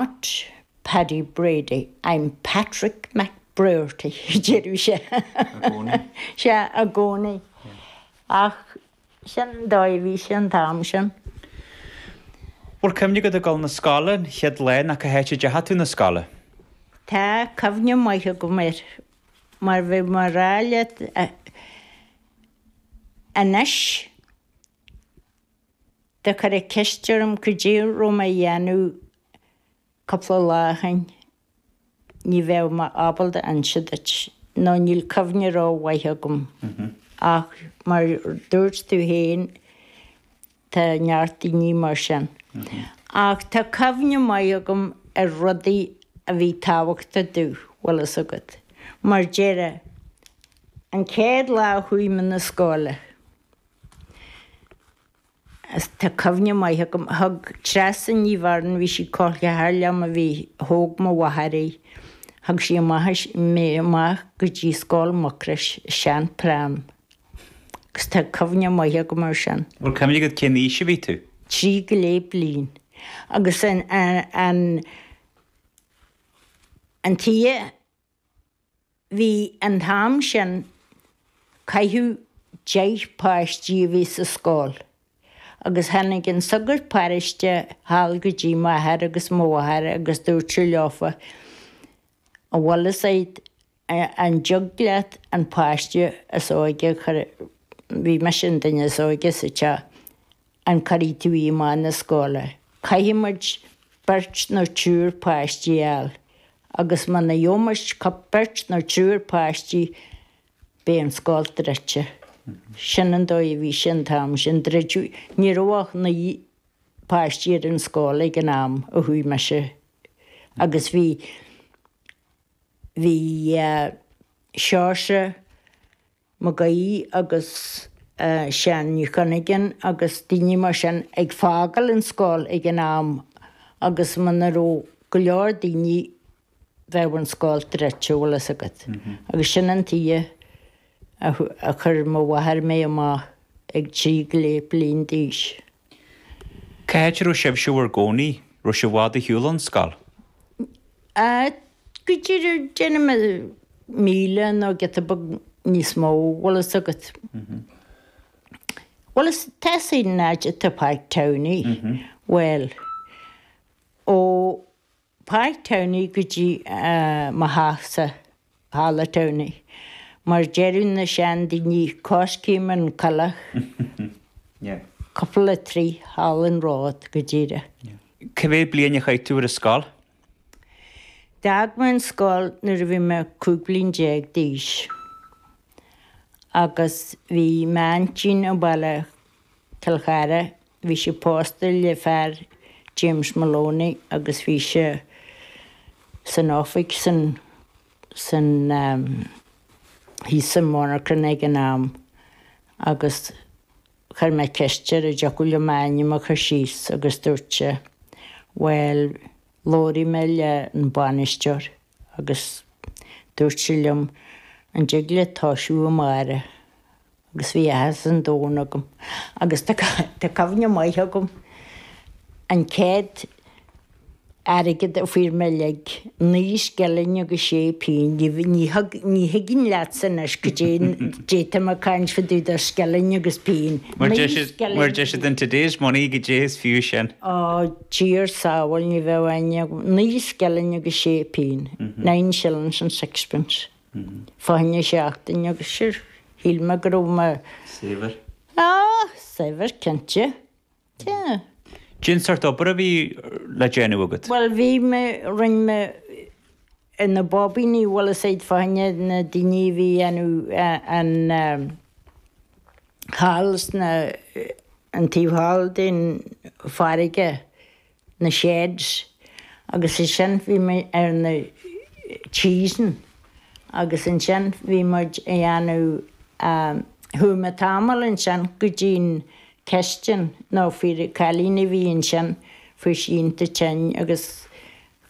Not Paddy Brady, I'm Patrick McBrearty, deireadh sé. I gcónaí. Sea, i gcónaí. Ach sin an dóigh a bhí sé an t-am sin. Bhfuil cuimhne agat ag dul 'na scoile an chéad lá ná cá háit a deachaidh tú 'na scoile? Tá cuimhne maith agam air mar bhí mé a rá leat anois. Dá gcuirfeá ceist orm goidé raibh mé a dhéanamh cúpla lá ó shin. Ní bheadh mé ábalta a inse duit, nó níl cuimhne ró mhaith agam. Ach mar dúirt tú fhéin, tá neart daoine mar sin. Ach tá cuimhne maith agam ar rudaí a bhí tábhachtach domh, bhfuil fhios agat. Mar deire, an chéad lá a chuaigh mé na scoile. Tá cuimhne maith agam a thug Treasa Ní Bheirn, bhí sí col ceathar liom a bhí, thóg mo mháthair í, thug sí amach, mé amach go dtí Scoil Mucrois, i sean pram. Agus tá cuimhne maith agam ar sin. Bhfuil cuimhne agat cén aois a bhí tú? Trí go leith bliain. Agus an, an, an tuige Bhí an t-am sin, caithfeadh deich páistí a bheith sa scoil agus tháinig an sagart páráiste thall go dtí m'athair agus mo mháthair agus dúirt sé leofa, an bhfuil fhios a'd an dtig leat an páiste is óige a chur, bhí mise an duine is óige sa teach, An gcuirfidh tú í amach na scoile? Caithfidh muid beirt nó triúr páistí a fháil agus muna gheobhmuis beirt nó triúr páistí beidh an scoil druidte. Sin an dóigh a bhí sé an t-am sin. Druideadh, ní raibh ach naoi bpáistí ar an scoil ag an am a chuaigh mise agus bhí, bhí eh, Seosamh, Mag Aoidh agus Seán Mac Cuinneagáin agus daoine mar sin ag fágáil an scoil ag an am agus muna raibh go leor daoine bheadh an scoil druidte bhfuil 'fhios agat. Agus sin an tuige a chuir mo mháthair mé amach ag trí go leith bliain d'aois. Cá háit a raibh sibhse bhur gcónaí, raibh sé i bhfad ar shiúl ón scoil? N, a go díreach déanaim a míle nó giota beag níos mó, bhfuil fhios agat. Bhuel is teasaí an áit atá faighte ann í. Bhuel, ó. Páirc Tamhnaigh go dtí mo theachsa thall i dTamhnaigh mar deireadh na seandaoine coiscéim an coileach cúpla troigh thall an ród go díreach. Cé mhéad bliain a chaith tú ar an scoil? D'fhág mé an scoil nuair a bhí mé cúig bliain déag d'aois agus bhí m'aintín an baile Cill Chartha, bhí sí pósta le fear James Moloney agus bhí sé san oifig san san thíos sa monarchan ag an am agus chuir mé ceist air an dtiocfadh leis m'ainm a chur síos agus dúirt sé bhuel labhróidh mé le an bainisteoir. agus dúirt sé liom an dtig leat toisiú amárach agus bhí áthas an domhain agam agus tá cuimhne maith agam an chéad airgead a fuair mé uilig naoi scilling agus sé pingin ní bhfuil ní thug ní thuigim leatsa anois goidé atá mé ag caint faoi do do scilling agus pingin. Mar deir siad mar deir siad in today's money goidé is fiú sin. Á. Dia ár sábháil ní bheadh ann ach naoi scilling agus sé pingin, nine shillings and sixpence, fá choinne seachtaine agus sure shíl mé go raibh mé saibhir. Ah! Saibhir cinnte. Yeah. Cén sórt obair a bhí le déanamh agat? Bhuel bhí mé, rinne mé in na bobíní, bhuel is é fá choinne na daoine a bhí dhéanamh an eh, thall sna, an taobh thall den farraige, na sheds agus ansin bhí mé ar na cheese'n agus ansin bhí muid a dhéanamh chuaigh mé tamall ansin go dtí'n cistin nó fir, cailín a bhí ansin fuair sí iontach tinn agus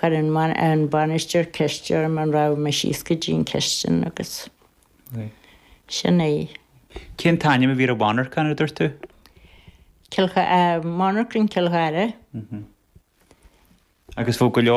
chuir an an bainisteoir ceist orm an rachadh mé síos go dtí'n cistin agus. Sin é. Cén t-ainm a bhí ar an mhonarchan a dúirt tú? Monarchan Cill Chartha. Agus bheadh go leor.